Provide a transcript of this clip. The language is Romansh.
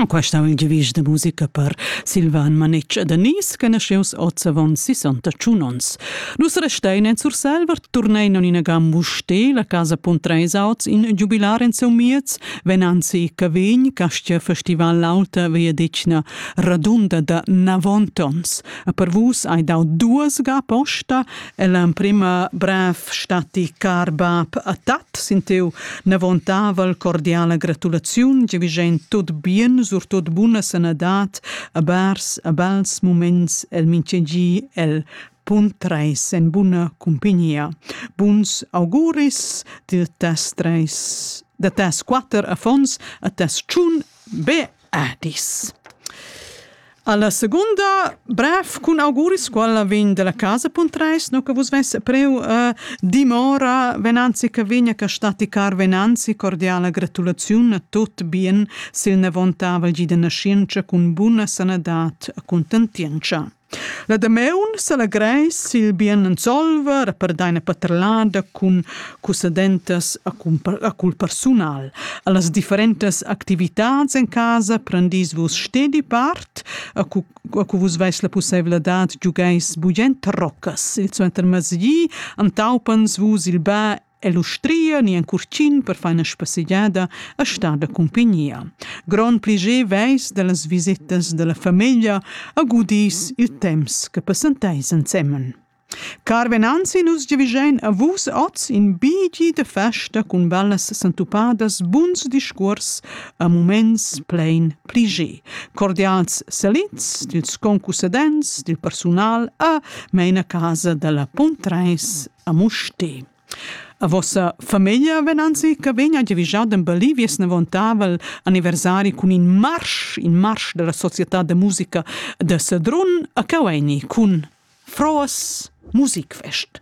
Questa è il giavisch da musica per Silvan Manetsch e Denise, che nasceus oz avon 61 onns. Dus restein en Surselva turnein in gambusch te, la casa Puntreis auts in giubilar en seu miez, venanzi Cavegn, Castia Festival Lauta via decna radunda da 90 ons. A per vus hai dau duas ga posta è l'emprima brev stati car bab a tat sin tiu nevontavel cordiala gratulaziun giavigend tot bien surtot buna sanadad a bers a bels moments el mintgegi el bun treis en buna cumpignia. Buns auguris de tes treis, de tes quatter affons a tes tschun be Adis. Alla seconda bref cun auguris quella vegn dalla casa Puntreis, no che vus vesse preu uh, dimora venanzi che vegna che staticar venanzi cordiala gratulaziun a tot bien sil nevontavol gi de nascienza cun buna sanadat a contentienza. La damaun s'allegreis il bien Ensolver e per deina paterlada cun cussadentas a cul persunal. Allas differentas activitats en casa prendis vus stedi part, a cu, a cu vus veis la pusseivladad giugeis bugent roccas. Il suentermezdi antaupans vus il bä e l'ustria ni en curtgin per far ina spassegiada a star da cumpignia. Grond pliger veis dallas visitas dalla famiglia a gudis il temps che passenteis ensemen. Car venanzi, nus giavigein a vus oz in bigi de festa cun bellas sentupadas, buns discuors a moments plein pliger. Cordials salits dils concusadents, dil persunal a meina casa dalla Puntreis a Musté. A vossa famiglia ven anzi che vegna giavischà d'embellir vies navontavel anniversari cun in marsch, in marsch della società de musica de Sedrun a Caueni cun froas musikfest.